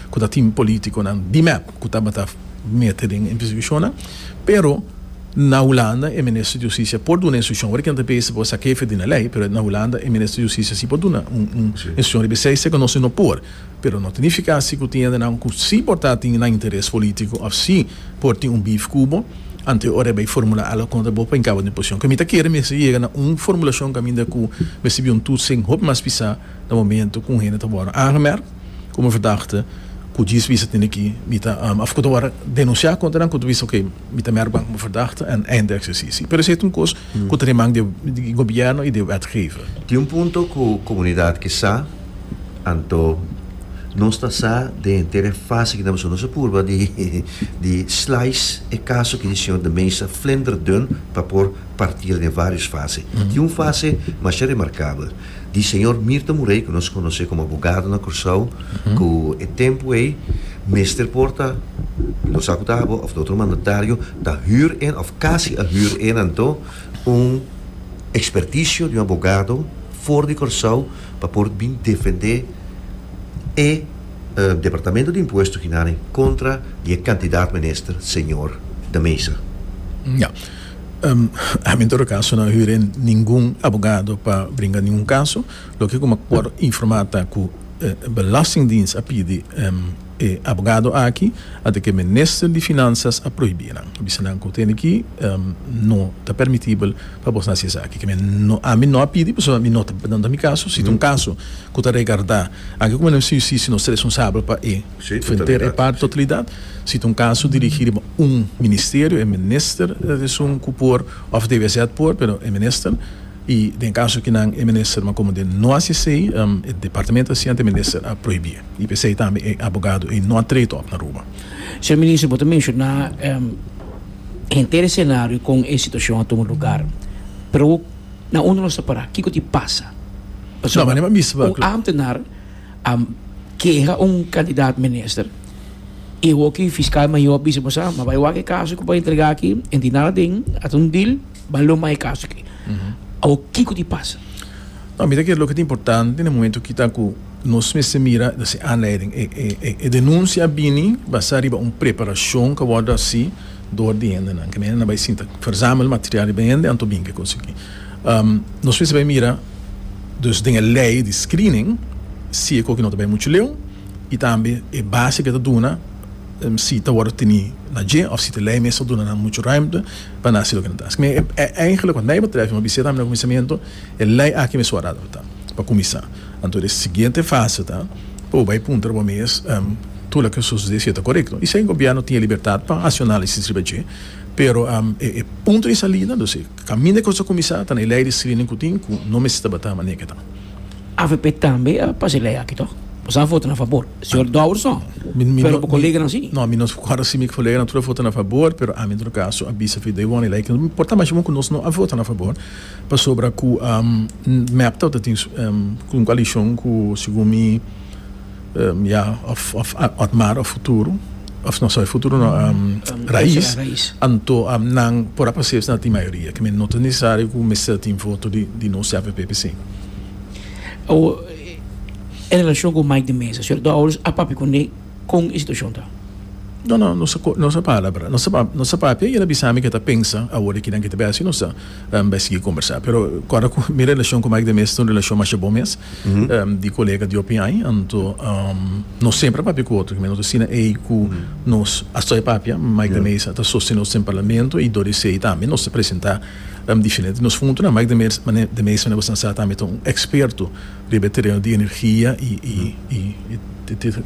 ku ta tin politikonan di mep ku tabata mete den e persekishonnan, pero na Hulanda e minister di hustisia por duna instruksyon, awor e kende ta pidi si por saka hefe di na lei, pero na Hulanda e minister di hustisia si por duna un instruksyon riba esei, sekundo nos no por, pero no ta nifiká si ku tin hendenan ku si por ta tin nan interes polítiko òf si por tin un bif ku bo, anto ora e bai formulá algu kontra bo pa hinká bo den posishon, ku mi ta kere mester yega na un formulashon kaminda ku mester biba un tur sin hopi mas pisá na momentu ku un hende ta wòrdu aangemerkt. ku mi verdagte ku djis bisa tende ki mi ta of ku ta wòrdu denunsiá kontra nan ku ta bisa okay mi ta mèrk ban ku mi verdagte en einde eksersisio pero esei ta un kos ku ta den man di di gobièrnu i di wetgever. Tin un punto ku komunidat ke sa anto nos ta sa den henter e fase ku ta paso nos a purba di di slice e kaso ki di señor de Meza flender dun pa por partir den varios fase tin un fase masha remarkabel. di señor Mirta Murey cu nos conoce como abogado na Cursao cu e tempo ey mester por ta y lo sa cu ta abo of ta otro mandatario ta huur en of casi a huur en anto un experticio di un abogado for di Cursao pa por bin defende e departamento di impuesto Ginarin contra di e cantidad minister señor de Meza. Ami n ta ora kaso nan huré ningun abogado pa bringa ningun kaso loke ku mi a por informá ta ku Belastingdiens a pidi e abogado aki a ta ke Minister di Finanzas a prohibí nan a bisa nan ku tene ki no ta permitibel pa bos na hasi esaki ke ami no a pidi pasobra mi no ta no ta mi kaso si ta un kaso ku ta regardá aki ku Minister di Hustisia nos ta responsabel pa e Fenter e par totalidat, si ta un kaso dirigí riba un ministerio, e minister ta esun ku por òf debe esèt por, pero e minister, i den kaso ki nan e minister ma komo den no hasi esei, e departamento asiente e minister a prohibí. I p'esei tambe e abogado ei no a trete òf na Aruba. Señor Minister, bo ta menshoná henter e senario kon e situashon a tuma lugar, pero na unda nos ta pará? Kiko tin pasa? Pasobra un ámtenar. A keha un kandidat minister i e hoki fiskal mayor a bisa bo sa, ma bai wak e kaso ku bo a entrega aki, e tin nada den, a ta un dil, bai lo mai e kaso aki. Awor kiko di pasa? No, mi ta kere loke ta importante na momento aki ta ku nos mester mira ta si aanleiding e denunsia a bini basá riba un preparashon ku a wòrdu hasi dor di hendenan, ku hende nan bai sinta, verzamel material riba hende anto binke konsegui. Nos mester bai mira dus den e lei di screening si e koki no ta bai muchu leu i tambe e base ke ta duna si ta wòrdu teni na dje òf si ta lei mes ta duna nan muchu ruimte pa nan hasi loke nan ta hasi. Eigentlek wak nai betrèf mi bisa tambe na kuminsamentu e lei aki mes wòrdu adaptá pa kuminsá. Anto e siguiente fase ta pa bo bai puntra bo mes tur loke sosodé si e ta korekto i si e gobièrnu tin e libertat pa hasi un análisis riba dje pero e punto di salida. Caminda cu sa cuminsa ta na e ley di screening cu tin cu no mester tabata manera cu ta. Avp tambe a pasa e ley aki to? Boso a vota na fabor, señor Douwerson, pero bo coleganan si. No, mi no cuadra si mi coleganan tur a vota na fabor, pero ami en todo caso a bisa Fidei Won e ley aki no importa, mas bon cu nos no a vota na fabor pasobra cu mep tabata tin un coalicion cu segun mi. ya of of otmar of futuro of no sorry futuro no rais anto nan por a pase'e na tin mayoria ke men no ta nesesario ku mester tin voto di di nos ya avp pe sin. en relashon ku Mike de Meza señor Dowers a papia kuné kon e situashon ta? No no nos a nos a palabra nos a nos a papia i el a bisa mi ke ta pensa awor de kinan ke ta bai asi nos ta Mba e sigui kombersá. Pero kòrda ku mi relashon ku Mike de Meester ta un relashon masha bon mes, di kolega di hopi aña. Anto nos semper a papia ku otro. Nos asina ei ku nos a stòria papia. Mike de Meester a ta sostené nos den parlamento i dor di esei tambe nos ta presentá diferente nos puntonan. Mike de Meester mester a sa tambe ta un eksperto riba e tereno di energia i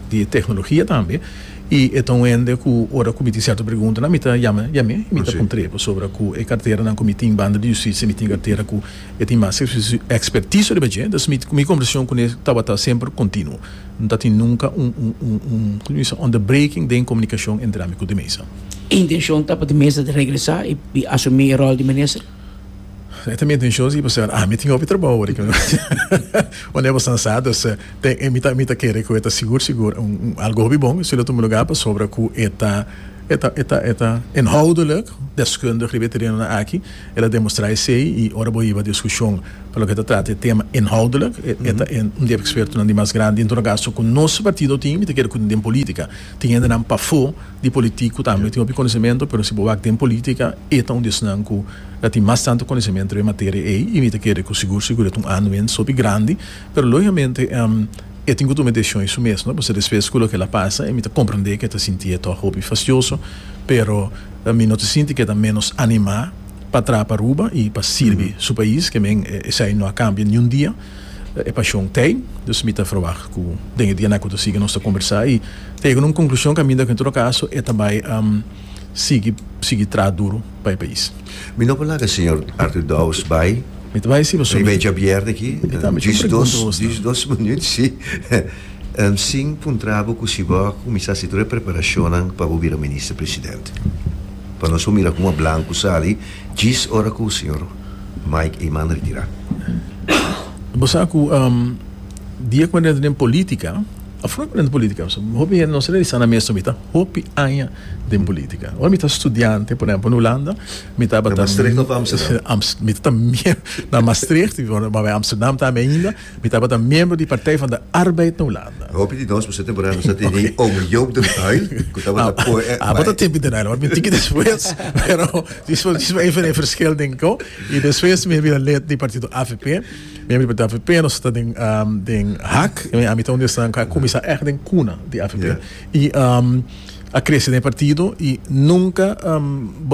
di teknologia tambe. I e ta un hende ku ora ku mi tin sierto preguntanan mi ta yama di ami i mi ta puntr'é pasobra ku e karteranan ku mi tin banda di Hustisia mi tin kartera ku e tin mas ekspertiso riba dje. Entonces mi mi konversashon kune tabata semper kontinuo. No ta tin nunka un un komo mi bisa underbreking den komunikashon entre ami ku de mesa. Intenshon ta pa de mesa ta regresá i asumí e ròl di minister? E ta mi atenshon si bo ta siña, ami tin hopi trabou wak dikon unda e bo sta sa, dus mi ta kere ku e ta sigur sigur algu hopi bon si lo tuma lugá pasobra ku e ta e ta e ta e ta inhoudelik deskundig riba e terenonan aki, el a demostrá esei i ora bo hiba diskushon pa loke ta trata e tema inhoudelik e ta un di e ekspertonan di mas grandi dentro di un kaso ku nos partido tin mi ta kere ku den polítika tin hendenan pafó. di politiku tambe tin hopi konesementu pero si bo wak den politika e ta un di esnan ku ta tin mas tantu konesementu den e materia ei i mi ta kere ku sigur sigur e ta un anuens hopi grandi pero logikamente e tin ku tuma e desishon e su mes no pasobra despues ku loke el a pasa e mi ta komprende ku e ta sinti e ta hopi fastioso pero mi no ta sinti ku e ta ménos animá pa traha pa Aruba i pa sirbi su pais ke men esei no a kambia niun dia. E pashon t'ei, dus mi ta ferwagt ku den e dianan ku ta sigui nos ta kombersá i ta yega na un konklushon kaminda ku en todo kaso e ta bai sigui sigui traha duru pa e pais. Mi no por laga señor Arthur Dowes bai. Mi ta bai si pasobra. Mi bai dja bièrnè aki djis dos djis dos minüt si sin puntrá bo ku si bo a kuminsá hasi tur e preparashonnan pa bo bira Minister Presidente. Pa nos por mira kuma blanku sali djis ora ku señor. Mike e manda retira. Bo sa cu di e comandente den politica, a fora den politica, pasobra hopi hende nos ta di sa na mes, mi ta hopi aña den politica. Ora mi ta studiante, por ehempel, na Hulanda, mi tabata. Na Maastricht of Amsterdam? Mi ta ta mier na Maastricht, mi ta bay Amsterdam tambe ainda. Mi tabata miembro di Partij van de Arbeid na Hulanda. Hopi di nos por ser temporá nos a tene oom Joop den Uyl cu tabata poe e bai. Tabata tempi den Uyl, mi tiki despues pero despues mi a even e verschil den cu y despues mi a bira lid di partido avp, miembro di partido avp, nos ta den den hak, ami ta un di esnan cu a cuminsa echt den cuna di avp y a crece den e partido y nunca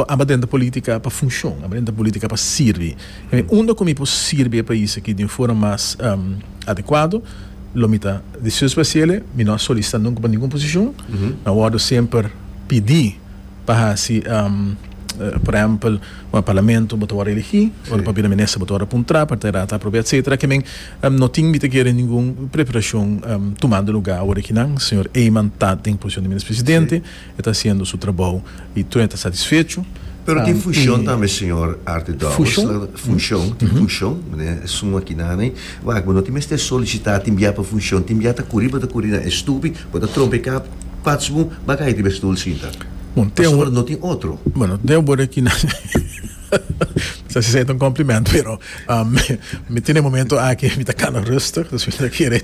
abo dentro politica pa funcion, abo dentro politica pa sirbi. Mi unda ku mi por sirbi e pais aki di un forma mas adekuado, lo mi ta desioso pa hasiele. Mi no a solisitá nunka pa ningun posishon. Mi a wòrdu semper pidi pa hasi, por ehèmpel, ora parlamento bo ta wòrdu elegí, ora pa bira minister bo ta wòrdu puntrá, pa tera ta aprobé, etsetera. Ke men no tin mi ta kere ningun preparashon tumando lugá awor aki nan. Señor Eyman ta den posishon di minister presidente. E ta hasiendo su trabou y Troy ta satisfecho. Pero tin fushon tambe señor Arthur Dowers. Fushon? Fushon, tin fushon, mane esun makinani. Wak, bo no tin mester solicita tin bia pa fushon, tin bia ta curi, bo ta curi na e stupi, bo ta trompa e cap, pats boom, ba cay riba e stoel sinta. Bon, te awor. Pasobra no tin otro. Bueno, te awor aki na mi ta hacé un compliment, pero mi tin e momento aki mi ta cana rustig, dus mi ta kere.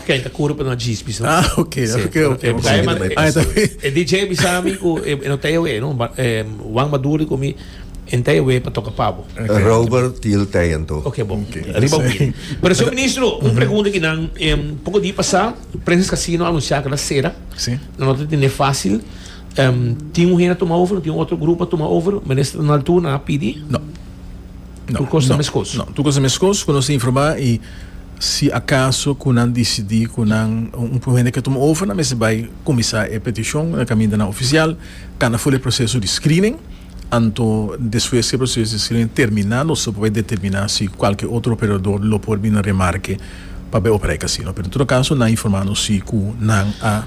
Oke e ta kuru pa nos djis bisa. Ah oke oke oke e bisa mi tamei pasa. E DJ a bisa mi ku e no ta ewe no Juan Maduri ku mi e no ta ewe pa toka pabo. Robert ti el tei anto. Oke bon riba wini. Pero señor ministro un pregunta ki nan poko di pasa Princess Casino a anuncia ku na sera nan no ta tende facil tin un hende a tuma over tin otro grupo a tuma over minister Donald Tuo nan a pidi? No. Tur kos ta meskos? No, tur kos ta meskos ku nos ta informá i si akaso ku nan disidí ku nan un prueba hende ke tuma over nan mester bai kuminsá e petishon na kaminda nan ofisial kanda fo e proseso di screening anto despues ku e proseso di screening terminá nos ta por bai determiná si kualke otro operador lo por bini remarke pa bai operá e kasino pero en todo kaso nan a informá nos si ku nan a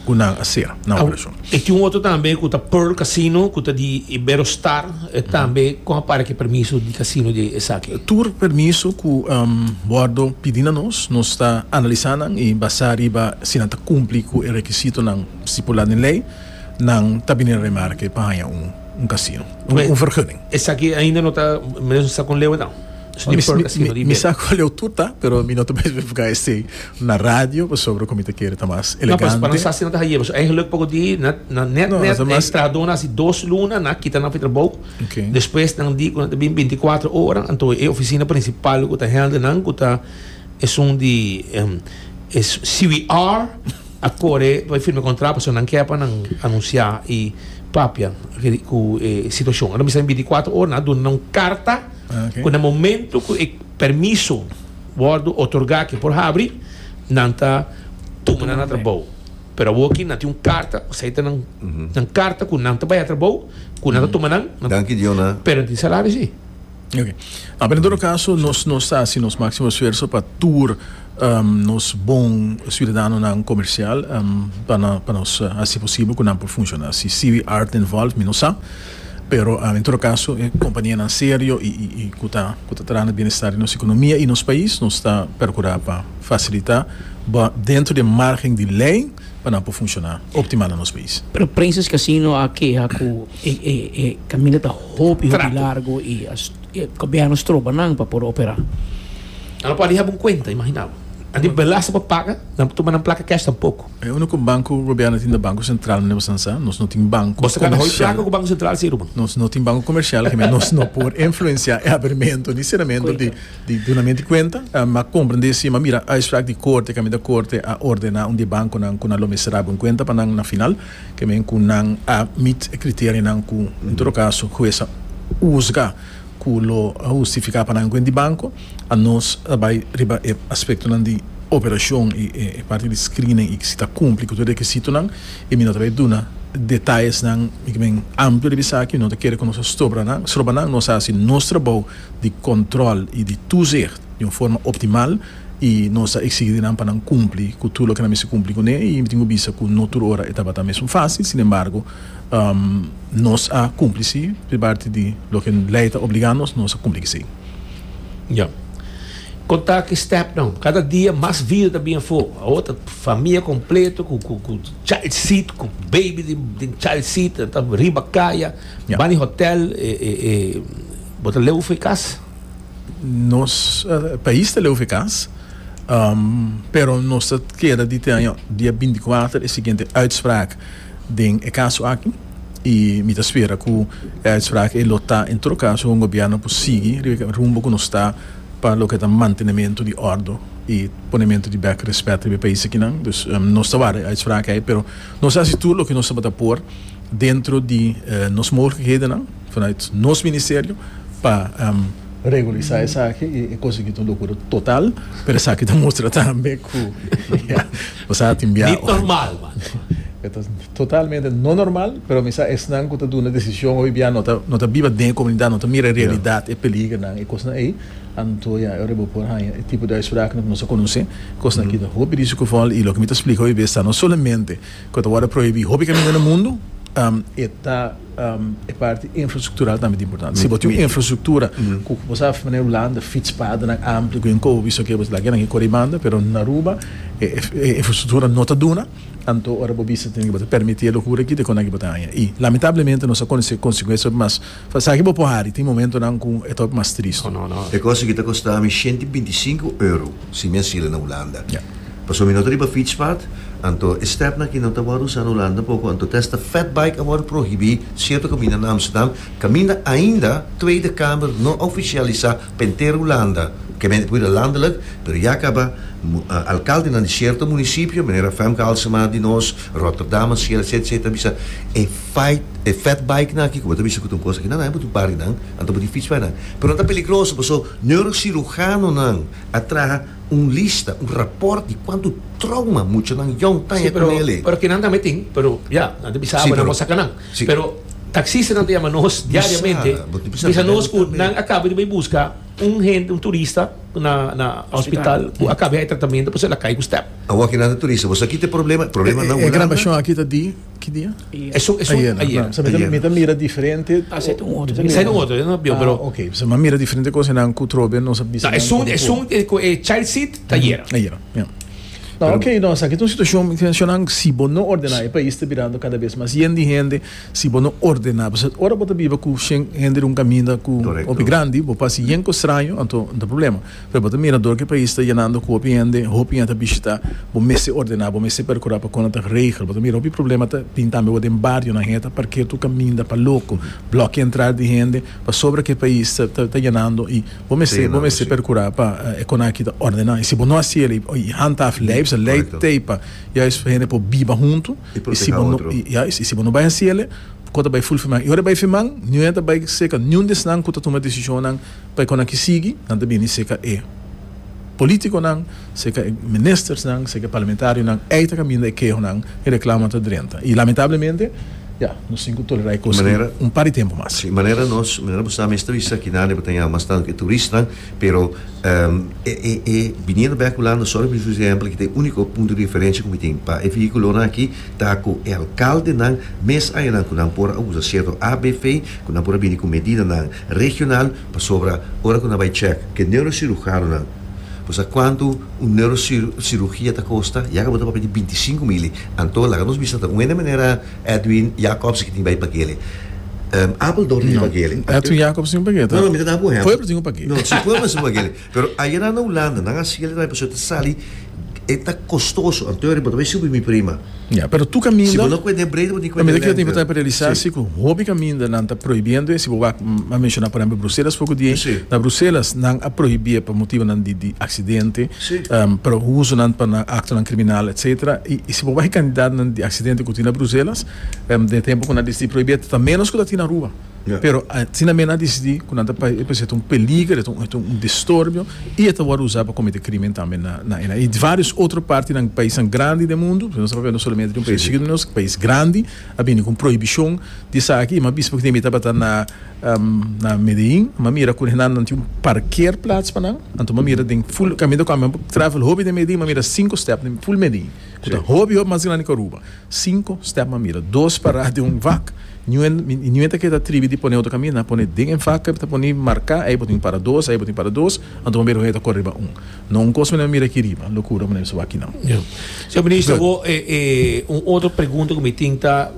ku nan a ser na operashon. E tin un otro tambe ku ta Pearl Casino ku ta di Iberostar, e tambe kon a para ki permiso di casino di esaki? Tur permiso ku Bordo pidi na nos, nos ta analisá nan i basá riba si nan ta kumpli ku e rekisitonan stipulá den lei, nan ta bini na remarke pa haña un casino, un vergunning. Esaki ainda no ta, menos no sa kon leu e dan. Mi sa cual eu tuta, pero mi no ta mester busca esey na radio, pasobra cu mi ta kere ta mas elegante. No, pa nos asina no ta haye, pasobra e geluk poco di na net net e trahador na haci dos luna, na kita nan pi trabao, despues nan di cu nan ta bin binti kuater ora, anto e oficina principal cu ta hende nan cu ta esun di CBR a core pa e firma contrato, pasobra nan kier pa nan anuncia y papia cu e situacion. Ora mi sa bin binti kuater ora, nan a duna nan un carta. Cu na momento cu e permiso wordo otorga cu e por habri, nan ta tuma nan na trabou. Pero awo aki nan tin un carta, o sea, ta nan, nan carta cu nan ta bay a trabou, cu nan ta tuma nan, pero nan tin salario si. Ok. Ape na todo caso nos, nos ta haci nos maximo esfuerzo pa tur nos bon ciudadanonan comercial, pa, pa nos haci posibel cu nan por funciona. Si CBR ta involve mi no sa. Pero en tur kaso e kompanianan serio i ku ta traha na bienestar di nos ekonomia i nos pais, nos ta perkurá pa fasilitá bo dentro di e margen di lei pa nan por funshoná optimal na nos pais. Pero Princess Casino a keha ku e kaminda ta hopi hopi largu i e gobièrnu stroba nan pa por operá. Nan no por a diha bon kuenta, imaginá bo. Nan di belasta pa paga, nan por tuma nan plaka cash tampoko. E unico banco gobierno tin ta Banco Central meneer Sansah. Nos no tin banco comercial. Boso ta coge placa cu Banco Central si Ruben? Nos no tin banco comercial Gemey. Nos no por influencia e abrimento ni ceramento di dunamento di cuenta. M'a comprende si m'a mira uitspraak di corte caminda e corte a ordena un di e banconan cu nan lo mester abri un cuenta pa nan na final caminda cu nan a meet e criterionan cu en todo caso hues a huzga cu lo justifica pa nan un cuenta di banco. Anos a bai riba e aspektonan di operashon i e parti di screening i si ta kumpli ku tur e rekisitonan i mi no ta bai duna detayesnan mi kimin amplio riba esaki. Mi no ta kere ku nos ta stroba nan stroba nan. Nos a hasi nos trabou di kòntròl i di tuzicht di un forma optimal i nos ta eksigí di nan pa nan kumpli ku tur loke nan mester kumpli kuné i mi tin ku bisa ku no tur ora e tabata mesun fásil. Sinembargo, Nos a kumpli si pri parti di loke lei ta obligá nos, nos a kumpli ku esei. Ya. Kon ta ki stèpnan? Kada dia mas vida ta bini afó. Awor ta famia kompleto ku ku child seat, ku beibi den child seat ta riba kaya, bani di hotèl, e e e bo ta leu fe kas? Nos pais ta leu fe kas, pero nos ta keda di te aña dia binti kuater e siguiente uitspraak. den e kaso aki i mi ta spera ku e uitspraak ei lo ta en tur kaso un gobièrnu ku sigui riba e rumbo ku nos ta pa loke ta mantenementu di òrdu i ponementu di bèk rèspèt riba e pais akinan dus nos ta wardá e uitspraak ei pero nos ta hasi tur loke nos tabata por dentro di nos mogelikhedennan vanuit nos ministerio pa regulisá esaki i e kos aki ta un lokura total pero esaki ta mustra tambe ku. Di normal man. E ta totalmente no normal, pero mi sa esnan cu ta duna decision hoy bia no ta no ta biba den e comunidad, no ta mira e realidad, e peligronan, e cosnan ey, anto ya ora bo por haya e tipo di uitsprakennan cu nos a conoce, cosnan a kita hopi risco geval y loke mi ta splica hoy bes ta no solamente cu ta wordo prohibi hopi caminda na mundo, e ta. E parti infrastruktural tambe ta importante. Si bo tin un infrastruktura ku ku bo sa manera Hulanda, fitspadennan ampli ku enko bo bisa ke laga nan ke kore banda pero na Aruba e infrastruktura no ta duna anto ora bo bisa tin bo ta permiti e lokura aki ta kon bo ta haña i lamentablemente nos a konosi konsekuensia op mas esaki bo por hari tin momentonan ku e ta op mas tristu. E kos aki ta kosta mi shenti binti sinku euro. Si mi a sila na Hulanda. Pasobra mi no ta riba fietspad, anto e stepn aki no ta wòrdu usá na Hulanda poko, anto ta esta fatbike a wòrdu prohibí sierto kaminda na Amsterdam, kaminda ainda Tweede Kamer no a ofisialisá pa henter Hulanda, kèmente por bira landelik, pero ya kaba alkaldenan di sierto munisipio, manera Femke Halsema di nos, Rotterdam a sila etc. Ta bisa e fight e fatbikenan aki ku bo ta bisa ku ta un kos aki nan nan e bo ta un parkenan, anto bo tin fietsbikenan, pero nan ta peligroso paso. Neurocirujanonan a traha un lista, un raport di cuantu trauma muchanan yòn taña cu me'el'e. Pero kinan tambe tin, pero ya, nan ta bisa abo nan por saca nan. Pero taxistanan ta yama nos diariamente, ta bisa nos cu nan a caba di bay busca un hende, un turista na na hospital cu a caba di hay tratamento, pues el a cay cu step. Awor ki nan ta turista, bo sa kit e problema? E problema nan unan nan. E grabacion aki ta di. Ki dia? Esun esun ayera. Ayera. No, so mi ta mi ta mira diferente. Ta seit un otro. Ta seit un otro, no bio pero. Ah, okay. So mi mira diferente cosa nan ku trobe nos ap bisa. Ta esun esun ku e child seat ta ayera. Ayera. Ja. No, okay, no, sa ki ta un situashon mi ta menshona si bo no ordena e pais ta birando kada bes mas yen di hende si bo no ordena pasobra ora bo ta biba ku shen hende di un kaminda ku hopi grandi bo pasa yen ku straño anto nan ta problema. Pero bo ta mira door ki pais ta yenando cu hopi hende, hopi hende ta bishita, bo mester ordena, bo mester percura pa con ta regel, bo ta mira hopi problema ta bin tambe awor den barionan, hende ta parkea tur caminda pa loco, blokia entrada di hende, pasobra cu e pais ta ta ta yenando y bo mester bo mester percura pa e con aki ta ordena y si bo no haci el y handhaaf ley, bisa ley tey pa juist hende por biba hunto y si bo no juist y si bo no bay haci ele, con ta bay full fiman y ora e bay fiman, niun hende ta bay cerca, niun di esnan cu ta tuma decisionnan. Pa e kon aki sigui, nan ta bini seka e politikonan, seka e ministersnan, seka e parlamentarionan ei ta kaminda e kehonan, e reklamanan ta drenta. I lamentablemente, ya, nos tin ku tolerá e kos aki un par di tempu mas. Si, manera nos, manera bo sa mes ta bisa aki nan e bo ta yama masnan e turistnan, pero e biniendo bèk Hulanda sòru mi bisa ehèmpel aki ta e úniko punto di referensha ku mi tin pa e vehíkulonan aki ta ku e alkaldenan mes ayanan ku nan por a usa sierto abv ku nan por a bini ku medidanan Regional pasobra ora cu nan bay check ke neurocirujanonan bo sa cuanto un neurocirugia ta costa ya cu bo ta papia di binti i sinku mil y anto laga nos bisa ta un hende manera Edwin Jacobs ki tin bay pakele Apeldoorn tin un pakele Edwin Jacobs tin un pakele ta Pueblo tin un pakele no si Pueblo tin un pakele Pero ayera na Hulanda nan a sigue lena y pasobra ta sali e ta costoso anto riba tambe subi mi prima. Ya, pero tur caminda, Si bo no cuenta e breed bo tin cuenta e lengte. Bo ta por realisa si cu hopi caminda nan ta prohibiendo e, si bo wak a menciona por ehemplo Bruselas poco di ey, na Bruselas nan a prohibié pa motibonan di di accidente, pero usonan pa nan actonan criminal etc. Y si bo bay cantidadnan di accidente cu tin na Bruselas den e tempo cu nan dicidi prohibié ta menos cu ta tin na Aruba. Pero asina men a disidi ku nan ta presenta un peliger, e ta un distorbio i e ta wòrdu usá pa komete krímen tambe na e. I vários otro partinan, paisnan grandi den mundu, nos ta hablando solamente di un pais chikitu, nos pais grandi a bini ku un prohibishon di esaki. I mi a bisa pasobra ku mi tabata na na Medellín, mi a mira ku nan nan tin un parkeerplats pa nan. Anto mi a mira den ful kaminda ku ami a travel hopi den Medellín mi a mira sinku stèp den ful Medellín ku ta hopi hopi mas grandi ku Aruba. Cinco step a mira dos pará den un vak ñuen y ñuen ta keda tribi di pone otro camina pone den e vak ta pone marca ey bo tin para dos ey bo tin para dos anto bo mira como ey ta cor riba un no un cos mane mira aki riba locura mane biso aki nan Señor Minister awo e un otro pregunta cu mi tin ta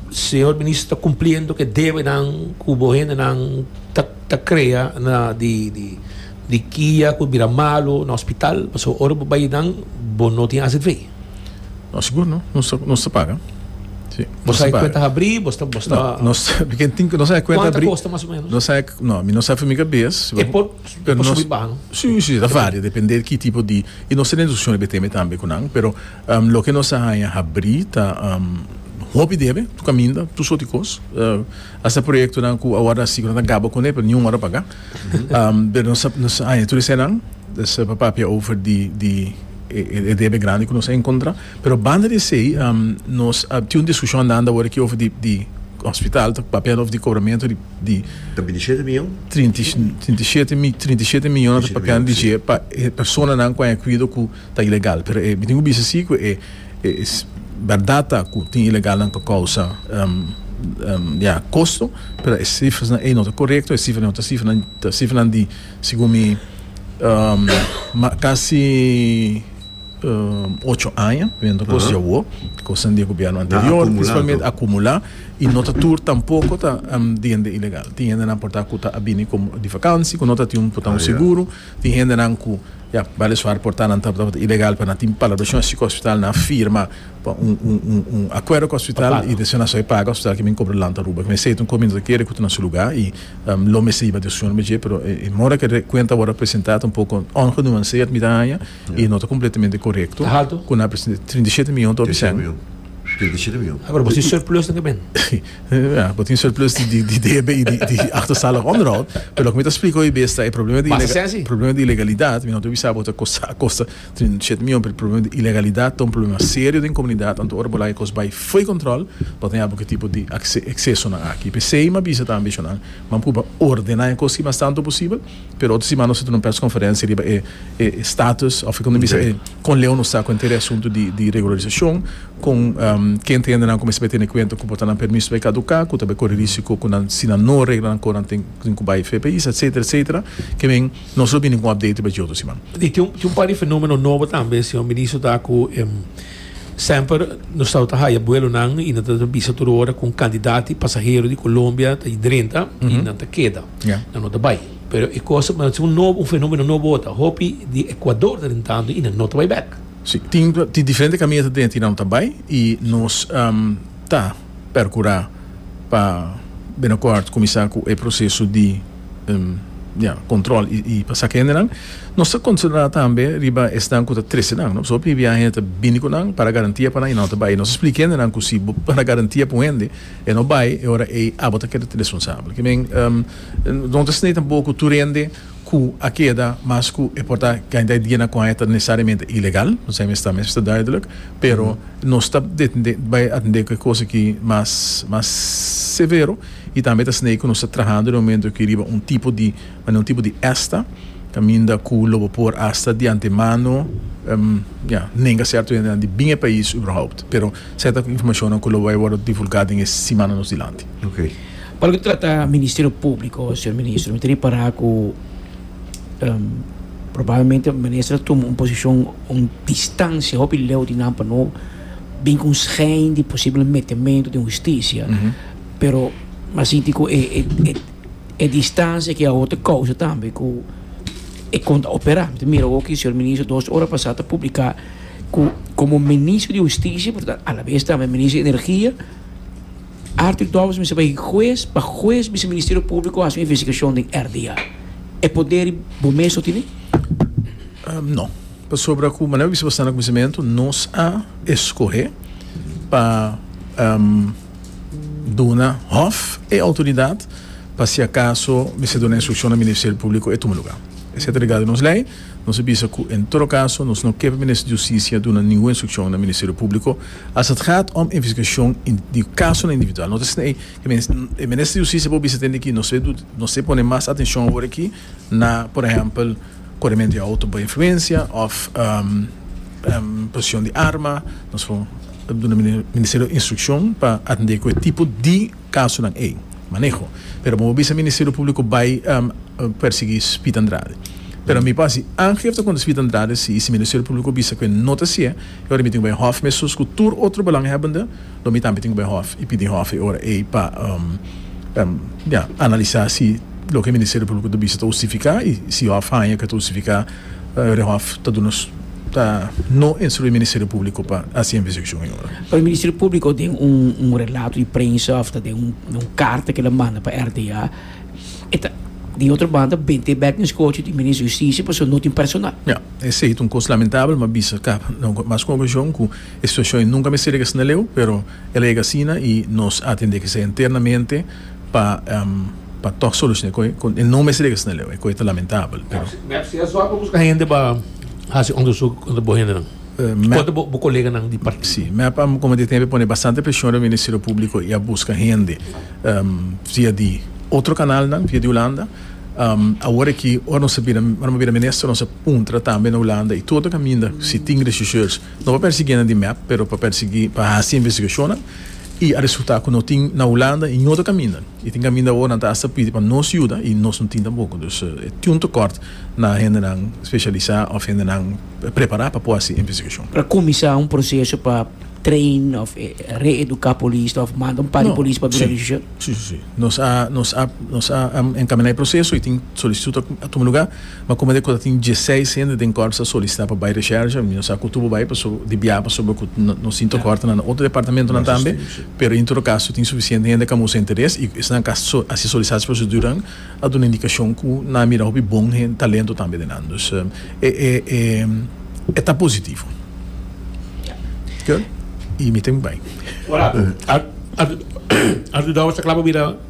Señor Minister ta cumpliendo cu e debenan cu bo hendenan ta ta crea na di di di kia cu bira malo na hospital pasobra ora bo bay nan bo no tin haci fe. No sigur no, nos nos ta paga. Sí, Bo sa kwenta habri, bo sta bo sta. No, nos ken tin nos sa kwenta habri. Kosta mas o menos. Nos sa no, mi no sa fumi ka bes. E por pero nos subi baha no. Sí, sí, ta varia depende ki tipo di i nos tene discusione beteme tambe ku nan, pero um loke nos a haña habri ta um hopi debe, tur kaminda, tur sort di kos. Uh hasta proyektonan ku awor asi nan ta gaba kune pero niun ora paga. Um pero nos nos haña tur esenan, nos a papia over di di e debe grandi ku nos a enkontrá. Pero banda di esei nos a tin un diskushon andando awor aki over di hospital ta papia over di kobramentu di Ta bini shete miyon? trinta i trinta i shete mi trinta i shete miyon ta papiando di dje pa e personanan ku a inkuido ku ta ilegal pero e mi tin ku bisa si ku e bèrdat ta ku tin ilegalnan ku a kousa ya kosto pero e sifranan ei no ta korekto e sifranan ei no ta sifranan ta sifranan di. Segun mi, kasi ocho aña biendo cos dje awo, cosan di e gobierno anterior principalmente a acumula y no ta tur tampoco ta di hende ilegal. Tin hendenan por ta cu ta a bini di vakantie cu no ta tin un por ta un seguro, tin hendenan cu ya bale suar por ta nan tabata ilegal pa nan tin palabra shon así cu hospital nan a firma. pa un un un un acuerdo cu hospital y di asina esaki paga hospital kimin cobra land ta Aruba mester ta un community ta kere cu ta na su lugar y lo mester yiba decision riba dje pero e mor cu e cuenta awor a presenta ta un poco ongenuanceerd mi ta haña y no ta completamente corecto Ta halto? cu nan a presenta trinta i shete miyon ta oca Treinta y siete sèn miljoen. Treinta y siete miljoen. Aver bo tin surplus na kimin? Ya bo tin surplus di di di debe y di di achterstallig onderhoud pero loke mi ta explica hoy bes ta e problema di Basta sesi? problema di ilegalidad mi no ta bisa bo ta costa a costa Tin siete mil hopi problema di ilegalidat ta un problema serio den comunidad anto ora bo laga e cos bay fo'i control lo ta yambo ki tipo di excesonan aki p'esey m'a bisa tambe eshonan m'a puba ordena e cos ki mas tanto posibel pero otro simana nos a tene un pers conferencia riba e status of como bisa e con leu nos ta cu henter e asunto di regularisacion con ken ta hende nan cu mester bay tene cuenta cu por ta nan permiso bay caduca cu ta bay cori risico cu nan si nan no regla nan cor nan tin cu bay fe pais etcetera etcetera kimen. Nos lo bini cu un update riba dje otro siman. Y tin un par di fenomeno nobo tambe, señor Ministro, ta cu semper nos tawata ta haya buelonan y nan ta ta bisa tur ora cu cantidad di pasahero di Colombia ta drenta y nan ta keda, Ya. nan no ta bay. Pero e cos, pero es un nobo, un fenomeno nobo ota. Hopi di Ecuador ta drentando y nan no ta bay bek. Si, tin, tin diferente camino ta drenta y nan no ta bay y nos ta percura pa binocort cuminsa cu e proceso di. control y pa saca hendenan nos ta concentra tambe riba esnan cu ta trece nan pasobra p'ebia hende ta bini cu nan para garantia pa nan y nan no ta bay nos explica hendenan cu si bo para garantia pa un hende e no bay e ora ey abo ta keda responsable ki men no ta sne tampoco cu tur hende cu a keda mas cu e por ta cantidad di dia nan cu aña ta necesariamente ilegal esaki mes ta mes ta duidelijk pero nos ta bay bay atende cu e cosa ki mas severo. Y tambe ta snei cu nos ta trahando den momento aki riba un tipo di manera, un tipo di esta, caminda cu lo bo por hasta di antemano, ehm, ya, nenga certo hendenan di bin e pais uberhaupt. Pero certa informacionnan cu lo bay wordo divulga den e simannan nos dilanti. Ok. Pa loke ta trata Ministerio Publico, señor Ministro, mi ta repara cu, ehm, probablemente e Minister a tuma un posicion, un distancia hopi leu di nan pa no bin cu un schijn di posible metemento den Husticia. pero m'a sinti cu e e distancia ki awo ta causa tambe cu e con ta opera. Mi ta mira awo cu e señor minister dos ora pasa ta publica cu como minister di husticia pero ta a la vez tambe minister di energia Arthur Dobbs mester bay huez pa huez bisa ministerio publico haci un investigacion den RDA. E poder y bo mes lo tene? No, pasobra cu manera bo bisa basta na cuminsamentu nos a escohe pa. duna hof e outoridat pa si akaso mester duna instrukshon na Ministerio Públiko e tuma lugá. Esei ta regá di nos lei. Nos a bisa ku en todo kaso nos no ke pa Minister di Hustisia duna ningun instrukshon na Ministerio Públiko as et gaat om investigashon di kasonan individual. No ta esei e Minister di Hustisia por bisa tende ki nos e nos e pone mas atenshon awor aki. na por ehempel korementu di outo bai influensia of posishon di arma nos por duna ministerio instrukshon pa atendé ku e tipo di kasonan ei maneho pero bo por bisa ministerio públiko bai persiguí Speed Andrade pero mi por hasi aangifte kontra Speed Andrade si i si ministerio públiko bisa ku e no ta sié ora mi tin ku bai hof mesun ku tur otro belanghebbende Lo mi tambe tin ku bay hòf i pidi hòf e ora ei pa ja analisá si loke Ministerio Públiko ta bisa ta hustifiká i si hòf haña ke ta hustifiká e hòf ta duna ta no instruí Ministerio Públiko pa hasi investigashon e ora. Pero Ministerio Públiko den un relato di prensa òf ta den un karta ke el a manda pa RDA e ta di otro banda bent'é bèk den skochi di Minister di Hustisia pasobra no tin personal. Ja, esei ta un kos lamentabel, mi a bisa kaba mas ku un okashon ku E situashon nunka mester llega asina leu, pero el a yega asina y nos a atende esei internamente pa pa toch soluciona e coe. E no mester llega asina leu, e coe ta lamentabel, pero. Si asua bo busca hende pa haci onderzoek contra bo hendenan, contra bo coleganan di partido. Si, mep a como di tempo a pone bastante presion riba Ministerio Publico y a busca hende via di otro canalnan, via di Hulanda. Awor aki ora nos a bira, ora nos a bira minister nos a puntra tambe na Hulanda y todo caminda si tin regisseurs. No pa persiguié nan di mep, pero pa persiguí pa haci investigacionnan y a resultá cu no tin na Hulanda y no ta caminda. Y tin caminda awor nan ta hasta pidi pa nos yuda y nos no tin tampoco. Dus e tin un tecort na hendenan specialisá of hendenan prepará pa por haci investigacion. Para cuminsá un proceso pa train of reeducá polis of manda un par di polis pa bira region? Sí, sí, sí. Nos a encamin'á e proceso y tin solicitud a tuma lugá. Ma como de cu ta tin diesseis hende den Corps a solicita pa bay recherche, mi no sa cu tur bo bay paso di bia paso bo cu nos tin tocorta na otro departamentonan tambe, pero in todo caso tin suficiente hende cu a mustra interes y esnan cu a haci solicitaci proceduran a duna indicacion cu nan a mira hopi bon talento tambe den nan dus e ta positivo. Good. Y mi ta mi bay. Ora cu. Ar, ar, ar, Artur Douwes ta cla pa bira.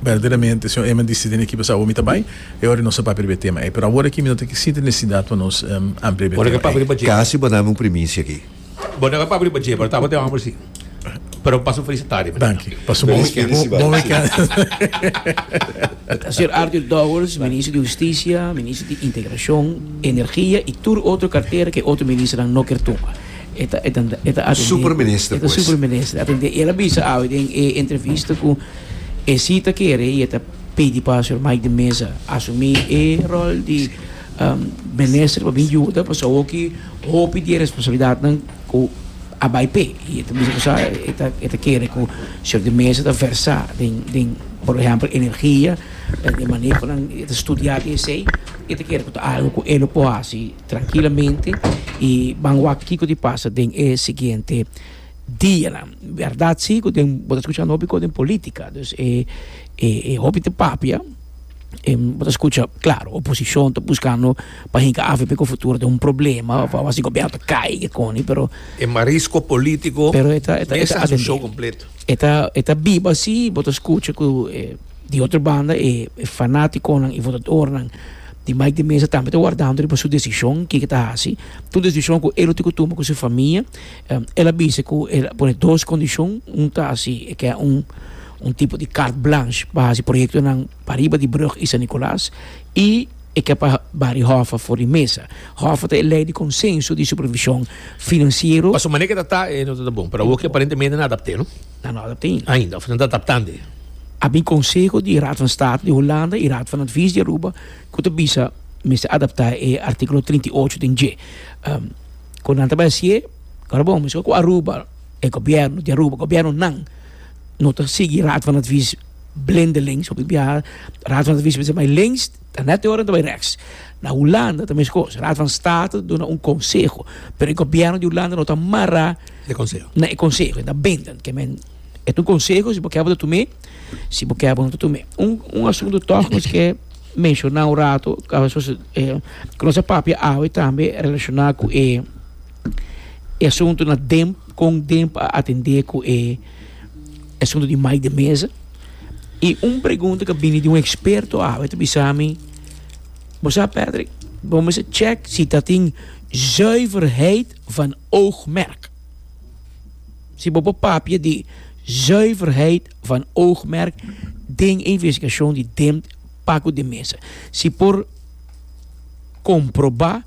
Berdaderamente, señor Eman disi den e ekipo sa ora mi ta bai, e ora nos a papia riba e tema ei. Pero awor aki mi no ta ke sinti nesesidad pa nos amplia riba e tema ei. Casi bo nami un primicia aki. Bo no a papia riba dje, pero ta bo te hòmber si. Pero pasa un felicitad riba. Danki. Pasa un bon weekend. Un bon weekend. Ta ser Arthur Dowers, Minister di Husticia, Minister di Integracion, Energia y tur otro cartera ke e otro ministernan no ker tunga. E ta e ta e ta atendé. Superminister pues. E ta superminister atendé. El a bisa awe den e entrevista ku e si ta kere i e ta pidi pa señor Mike de Meza asumí e rol di um minister pa bin yuda pasobra awoki hopi di e responsabilidatnan ku a bai p'e. I e ta bisa ku sa e ta e ta kere ku señor de Meza ta versá den den por ehèmpel energia, den e manehonan, e ta studiá di esei. I e ta kere ku ta algu ku e lo por hasi. trankilamente i ban wak kiko di pasa den e siguiente dianan. Bèrdat si ku den bo ta skucha un hopi kos den polítika, dus e e e hopi te papia, bo ta skucha, klaro, oposishon ta buskando pa hinka afe p'e futuro ta un problema òf awas di gobièrnu ta kai i kikoni, pero, E marisko polítiko mester hasi un show kompleto. e ta biba si bo ta skucha ku e. Di otro banda e fanaticonan y votadornan di Mike de Meza tambe ta wardando riba su decision kico e ta haci. Tur decision cu e lo tin cu tuma cu su famia. El a bisa cu e lo pone dos condicion, un ta si e ke un tipo di carte blanche pa haci proyectonan pa riba di brug y San Nicolas y e ke pa Barry Hoffa for di mesa. Hoffa ta e ley di consenso di supervision financiero. Pa su manera kieta ta e no ta bon pero awo ki aparentemente nan adapte no. Nan no adapté ainda. Ainda, of nan ta adaptando e. A bin konseho di Raad van State di Hulanda i Raad van Advies di Aruba ku ta bisa mester adaptá e artíkulo trinta i ocho den dje. Kon nan ta bai hasié? Ora bon, miskien ku Aruba, e gobièrnu di Aruba, gobièrnunan no ta sigui Raad van Advies blendelings, of di biaha Raad van Advies mester bai links. Ta nèt e ora ta bai rèks. Na Hulanda ta meskos. Raad van State ta duna un konseho, pero e gobièrnu di Hulanda no ta mará na e konseho, e ta bindend. Ke men, e ta un konseho, si bo kè bo ta tum'é, si bo kè bo no ta tum'é. Un un asuntu tòg nos ke menshoná un ratu ku nos a papia awe tambe relashoná ku e e asuntunan den kon den a atendé ku e. Asuntu di mai den mesa. I un pregunta ku a bini di un eksperto awe ta bisa mi, Bo sa Patrick, bo mester chèk si ta tin zuiverheid van oogmerk. Si bo por papia di zuiverheid van oogmerk den e investigashon di Dempt, pak ut den mesa. Si por komprobá.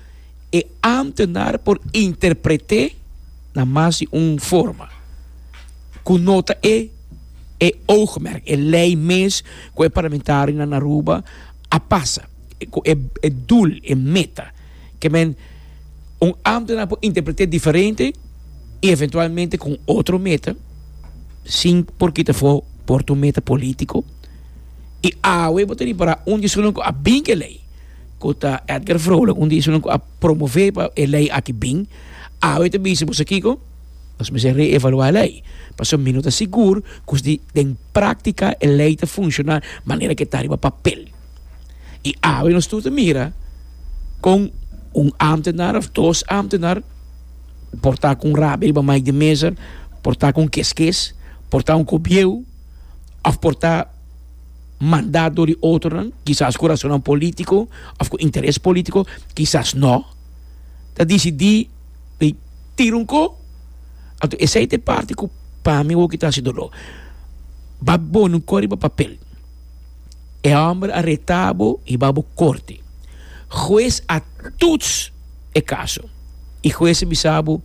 e ámtenar por interpret'é na mas di un forma ku no ta e e oogmerk, e lei mes ku e parlamentarionan na Aruba a pasa, ku e e doel, e meta. Ke men, un ámtenar por interpret'é diferente i eventualmente kon otro meta, sin por kita afó por tu meta polítiko, i awe bo ta ripará unda esun loke a binke lei. ku ta Edgar Vrolijk un di esunnan ku a promové pa e lei aki bin, awe ta bisa boso kiko? Nos mester reevaluá e lei, pasobra mi no ta sigur ku si den práktika e lei ta funshoná manera ku e ta riba papel. I awe nos tur ta mira kon un ámtenar òf dos ámtenar por ta ku un rabia riba Mike de Meza, por ta ku un keskes, por ta un kobieu òf por ta. mandá dor di otronan, kisas ku rasonnan polítiko òf ku interes polítiko, kisas nò, ta disidí di tira un ko. Anto esei ta e parti ku pa mi woki ta hasi doló. Ba boni un ko riba papel, e hòmber a retá bo i ba bo korte. Hues a tuts e kaso i hues a bisa bo,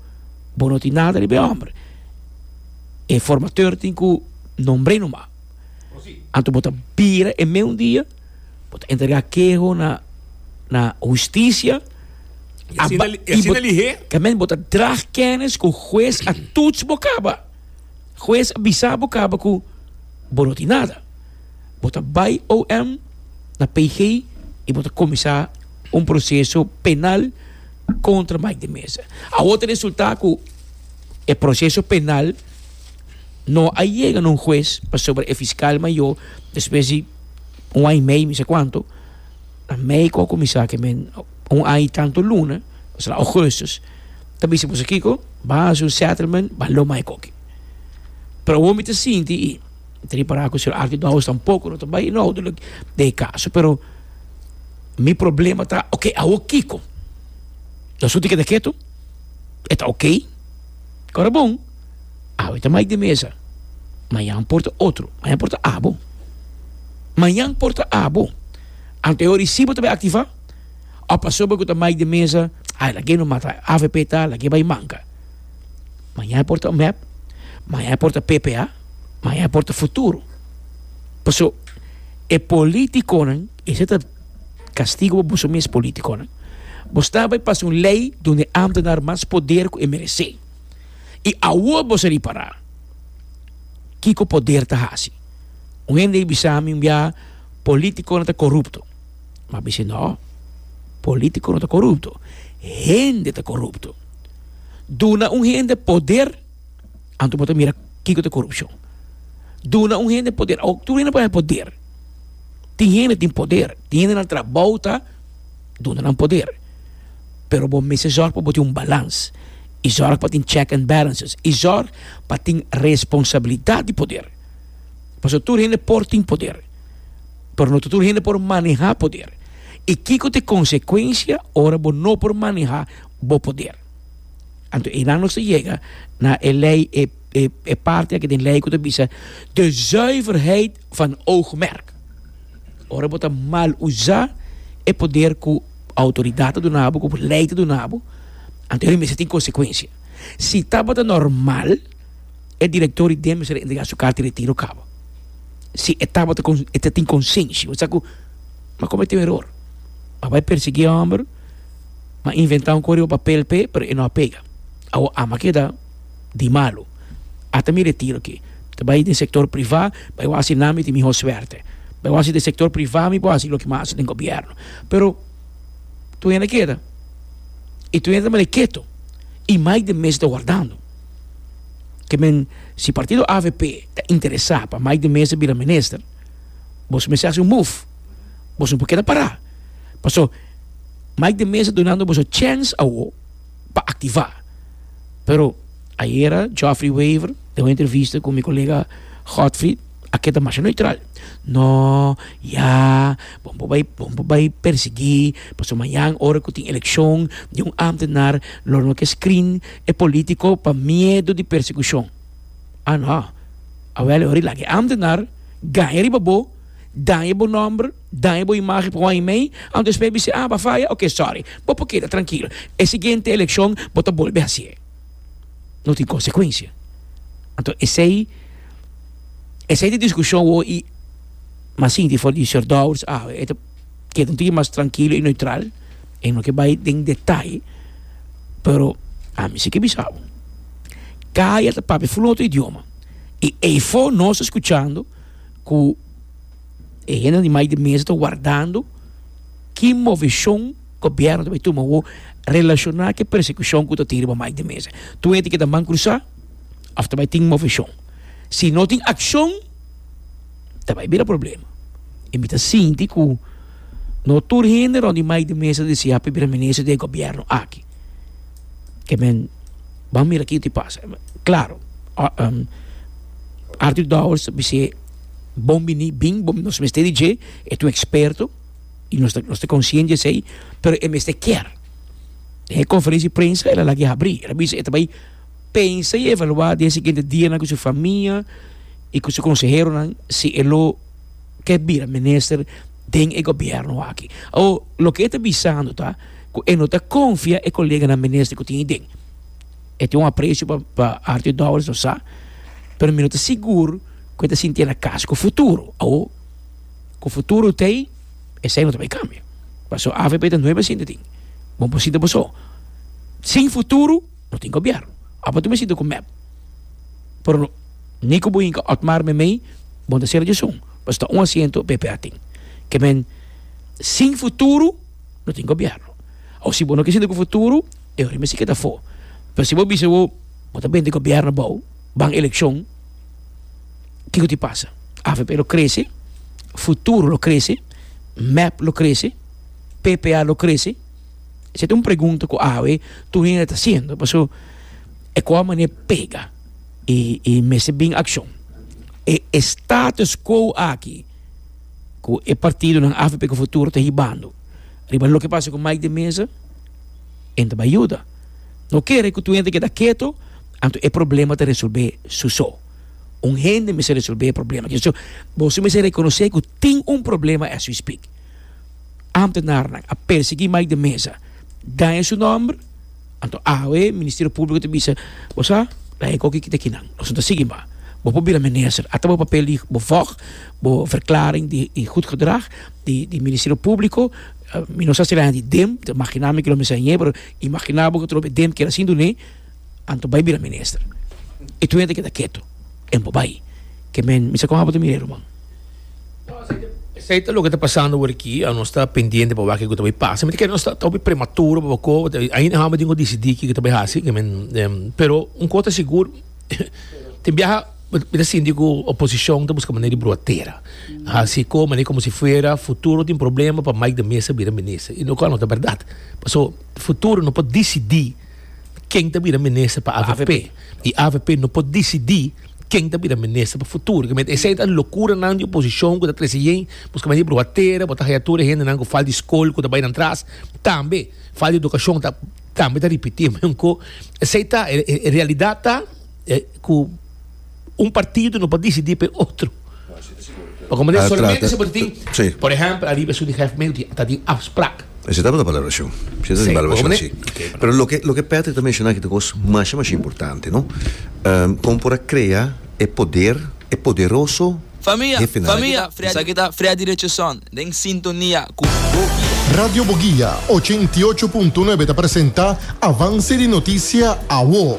bo no tin nada riba e hòmber, e formateur tin ku nombr'é nomás. Anto bo ta bira e meun dia, bo ta entrega keho na na hustisia, I asina aba, li, i i asina bo, lihé. Amen, bo ta dra kenis ku hues a tuts bo kaba. Hues a bisa bo kaba ku bo no tin nada. Bo ta bai OM na PG i bo ta kuminsá un proseso penal kontra Mike de Meza. Awor ta resultá ku e proseso penal. no a yega na un hues pasobra e fiskal mayo despues di un aña y mei mi sa cuanto ta mei cu a cuminsa ke men un aña y tanto luna paso na augustus ta bisa boso kiko ba haci un settlement ba lo mai koki pero awor mi ta sinti y mi ta ripara ku señor Archi Douwes tampoco no ta bay inhoudelijk den e caso pero mi problema ta ok awor kiko nos lo tin keda keto e ta ok ora bon. Awe ta Mike di mesa. Mañan por ta otro. Mañan por ta abo. Mañan por ta abo. Anto e recibo ta bai activa. Of pasobra cu ta Mike di mesa, ay, lagu'e no mata. Avp ta, lagu'e bai manca. Mañan e por ta mep. Mañan e por ta ppa. Mañan e por ta futuro. Paso, e politiconan, esei ta castigo pa boso mes politiconan. Bo sta bai pasa un ley dor e ambtenaar mas poder cu e merece. I awor boso a ripará. Kiko poder ta hasi? Un hende a bisa mi un biaha, Polítikonan ta korupto. Mi a bisa, No, polítiko no ta korupto. Hende ta korupto. Duna un hende poder, anto bo ta mira kiko ta korupshon. Duna un hende poder, tur hende no por haya poder. Tin hende tin poder, tin hende nan trabou ta. duna nan poder, pero bo mester zorg pa bo tin un balans i zorg pa tin check and balances i zorg pa tin responsabilidat di poder, pasobra tur hende por tin poder, pero no ta tur hende por maneha poder, i kiko ta e konsekuensia ora bo no por maneha bo poder? Anto einan nos ta yega na e lei, e parti aki den lei ku ta bisa de zuiverheid. van oogmerk. Ora bo ta mal usa e poder cu autoridad ta duna bo, cu ley ta duna bo, anto e mester tin consecuencia. Si tabata normal, e director di DEM mester a entrega su carta di retiro caba. Si e tabata con, e ta tin consenshi, bo sa cu bo a comete un error. A bay persegui e homber, bo a inventa un cor riba papel p'e, pero e no a pega. Awo ama keda. di malu. Ata mi retiro aki. Ta bai den sektor privá, bai wak hasi nan mi tin mihó suerte. Bai wak hasi den sektor privá mi por hasi loke mi a hasi den gobièrnu. Pero tur hende a keda i tur hende ta malai ketu i mai den mes ta wardando. Ke men, si partido avp ta interesá pa mai den mes ta bira minister, boso mester hasi un move. Boso no por keda pará. Pasobra mai den mes ta dunando boso chèns awo. pa activa. Pero ayera Geoffrey Wever den un entrevista cu mi colega Godfrey a keda masha neutral, No, ya, bo no bay, bo no bay persegui pasobra mañan ora cu tin eleccion di un ambtenaar lo no ke screen e politico pa miedo di persecucion. Ah no, awel e hora di laga e ambtenaar ganja riba bo, daña bo nomber, Daña bo imagen pa Wayne May, anto espe a bisa, ah, bo a faya, ok, sorry. Bo por keda trankil. E siguiente elekshon bo ta bolbe hasié. No tin konsekuensia. Anto esei, esei ta e diskushon wou i mas sinti for di Sèr Dowers, ah, e ta keda un tiki mas trankilo i neutral, e no ke bai den detay, pero ami si ke bisa bo, Kaya ta papia full otro idioma i ei for nos ta skuchando ku. E hende di mai di mesa ta wardando ki movishon gobièrnu ta bai tuma awor relashoná ku e persekushon ku ta tin riba mai di mesa. Tur hende ke ta man krusá òf ta bai tin movishon. Si no tin akshon ta bai bira problema. I mi ta sinti ku no tur hende rònt di mai di mesa ta desea pa e bira minister di e gobièrnu aki. Ke men ban mira kiko ta pasa. Klaru, Artur Dowers ta bis'é Bon bini bin bo nos mester di dje e ta un eksperto i nos ta nos ta konsiente di esei pero e mester kier den e konferensia di prensa el a lag'e habri el a bisa e ta bai pensa i evalua den e siguiente dianan ku su famia i ku su konseheronan si e lo ke bira minister den e gobièrnu aki o loke e ta bisando ta ku e no ta konfia e koleganan minister ku tin iden e tin un apresio pa pa Artur Dowers nos sa pero mi no ta sigur. ku e ta sinti e na kas ku futuro. Awo ku futuro ta ei, esei no ta bai kambia. Paso avp ta nueve asiento tin. Bon por sinta bo so. Sin futuro no tin gobièrnu. Ora bo ta sinta ku mep, pero ni ku bo hinka Otmar me mei, bo no ta sera djison, paso ta un asiento pp a tin. Ke men, sin futuro no tin gobièrnu. Awo si bo no ke sinta ku futuro, e orin mesiki e ta for. Pero si bo bisa bo, bo ta bende gobièrnu abou. ban elekshon kiko tin pasa avp lo krese futuro lo krese mep lo krese ppa lo krese esei ta un pregunta ku awe tur hende ta hasiendo paso e kua mane pega i i mester bin akshon e e status kwo aki ku e partidonan avp ku futuro ta hibando riba loke pasa ku Mike de Meza. en ta bai yuda. No kere ku tuhende keda keto, anto e problema ta resolbé su so. Un hende mester resolbé e problema. Kico? Boso mester rekonosé ku tin un problema as we speak. Ámtenarnan a persiguí Mike de Meza, daña su nòmber, anto awe Ministerio Públiko ta bisa, bo sa, laga e koki kita kinan, nos no ta sigui mas. Bo por bira minister, ata bo papel di bo vòg, bo verklaring di gud gedrag di Ministerio Públiko, Mi no sa si el a yanta di dem, ta imaginá mi ke lo mi sa iñe, pero imaginá bo ku ta loke dem keda sin dun'é, anto bai bira minister. E tur hende a keda ketu, e bo bai. Ke men, mi sa kon abo ta mir'é ruman. Esei ta loke ta pasando wor aki, anos ta pendiente pa wak kiko ta bai pasa. Mi ta kere nos ta hopi prematuro pa bo ko, ainda no habo di un ko disidí kiko ta bai hasi, ke men, pero un kos ta sigur, Tin biaha mi ta sinti ku oposishon ta buska manera di brua tera. Hasi ko manera komo si fuera futuro tin problema pa Mike de Meza bira minister, i lo kua no ta bèrdat. Paso futuro no por disidí ken ta bira minister pa avp, i avp no por disidí ken ta bira minister pa futuro. Kibiermenti esei ta lokuranan di oposishon ku ta trese yei buska manera di brua tera, bota haya tur e hendenan ku falta di skol ku ta bai nan tras tambe. Falta di edukashon ta. Ta, mi ta ripití meun ku esei ta e realidat ta ku un partido no por disidí pa e otro. Pa kome ta solamente si bo ta tin, por ehèmpel ariba esun di hèf medio dia ta tin afsprak. Esei tabata balarashon, esei tabata balarashon si. Pero loke Patrick ta menshoná aki ta kos mashá mashá importante, no? Kon por a krea e poder, e poderoso. Famia, famia, esaki ta Freddy Richardson den sintonia ku Bogia. Radio Bogia ochenta i ocho punto nuebe ta presenta Avance di Noticia, Awo.